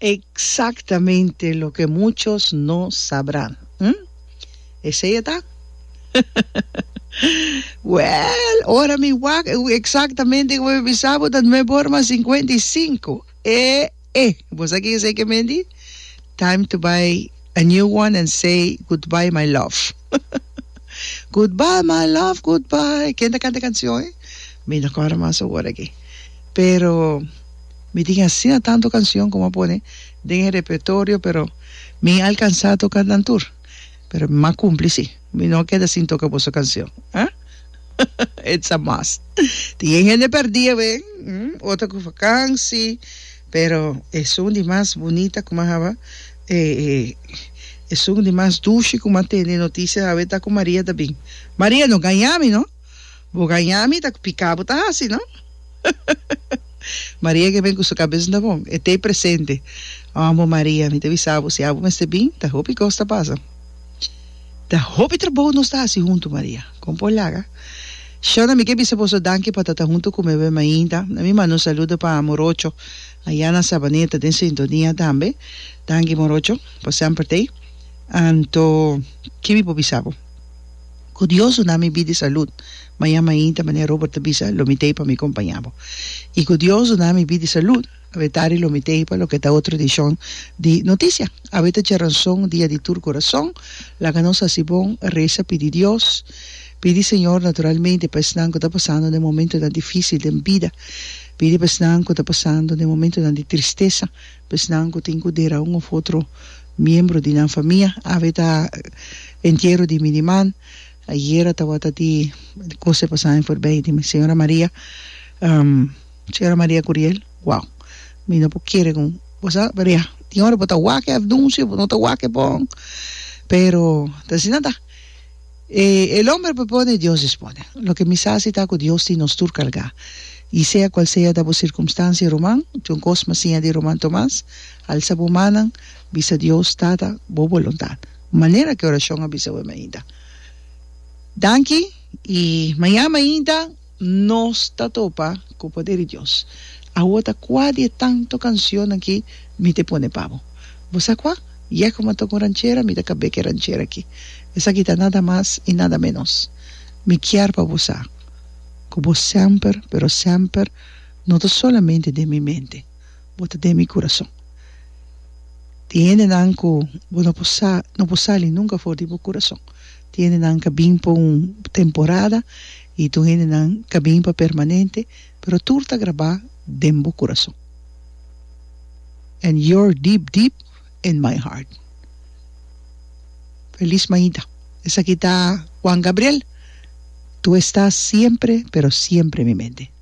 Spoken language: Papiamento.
Exactamente loke muchos no sabra. Hm? Esey e ta? Well, ora mi wak e un exactamente como mi bisa bo ta nuebe ora mas cincuenta y cinco. E e. Bo sa kin esey ke men di? Time to buy a new one and say goodbye my love. Goodbye my love goodbye ken ta canta e cancion e? Mi no corda mas awor aki pero mi tin asina tanto cancion cu mi a pone den e repertorio pero mi a alcansa toca nan tur pero mi a cumpli si mi no a keda sin toca boso cancion ah it's a must tin e hende perdi awe otro cu vakansi. Pero esun di mas bunita ku Mahaba e esun di mas dushi ku ma tene notisia hawe ta ku Maria ta bin. Maria no gaña mi no. Bo gaña mi ta ku piká bo ta hasi no. Maria ke ben ku su kabes no ta bon e t'ei presente. Ambo Maria mi ta bisa bo si abo mester bin ta hopi kos ta pasa. Ta hopi trabou nos ta hasi huntu, Maria. Kon por laga? Shona, mi ke bisa boso danki pa ta ta huntu ku mi awe mainta. Na mi manda un saludo pa Morocho ayá na Sabaneta den sintonia tambe. Danki Morocho pa semper t'ei. Anto, ke mi por bisa bo? Ku Dios duna mi bida i salut, ma ya mainta, manera Robert ta bisa, lo mi t'ei pa mi kompañá bo. I ku Dios duna mi bida i salut, Awe tari lo mi teipa loke ta otro edishon di Notisia. Awe ta Djaranson dia di tur kurason. Laga nos hasi bon, resa, pidi Dios. Pidi Señor naturalmente pa esnan ku ta pasando den momentunan difisil den bida. Pidi pa esnan ku ta pasando den momentunan di tristesa, pa esnan ku tin ku dera un òf otro miembro di nan famia. Awe ta entiero di mi niman. Ayera tawata di kos e pasá en forbei di mi señora Maria. Sra. Maria Curiel, Wow, mi no por kere ku bo sa, pero ya, tin ora bo ta wak e afnunsio, bo no ta wak e bon, pero ta asina ta. E el homber propone e Dios dispone. Loke mi sa si ta ku Dios tin nos tur kargá. I sea kual sea ta bo sirkumstansia ruman, John Cosma siña di ruman Tomas, alsa bo mannan, bisa Dios, Tata, bo boluntat. Manera ku e orashon a bisa web mainta. Danki i maña mainta. Nos ta topa ku poder di Dios. Awo ta kua di e tanto kansionnan ki mi te pone pa bo. Bo sa kua? Yeh komo ta tok un ranchera, mi ta kab'é ku e ranchera ki. Esaki ta nada mas i nada ménos. Mi kier pa bo sa ku bo semper, pero semper, no ta solamente den mi mente, bo ta den mi kurason. Tin hendenan ku bo no por sa, no por sali nunka for di bo kurason. Hendenan ka bin pa un temporada i tur hendenan ka bin pa permanente, pero tur ta grabá den bo kurason. And you're deep, deep in my heart. Felis mañita. Esaki ta Juan Gabriel, Tu estás siempre, pero siempre en mi mente.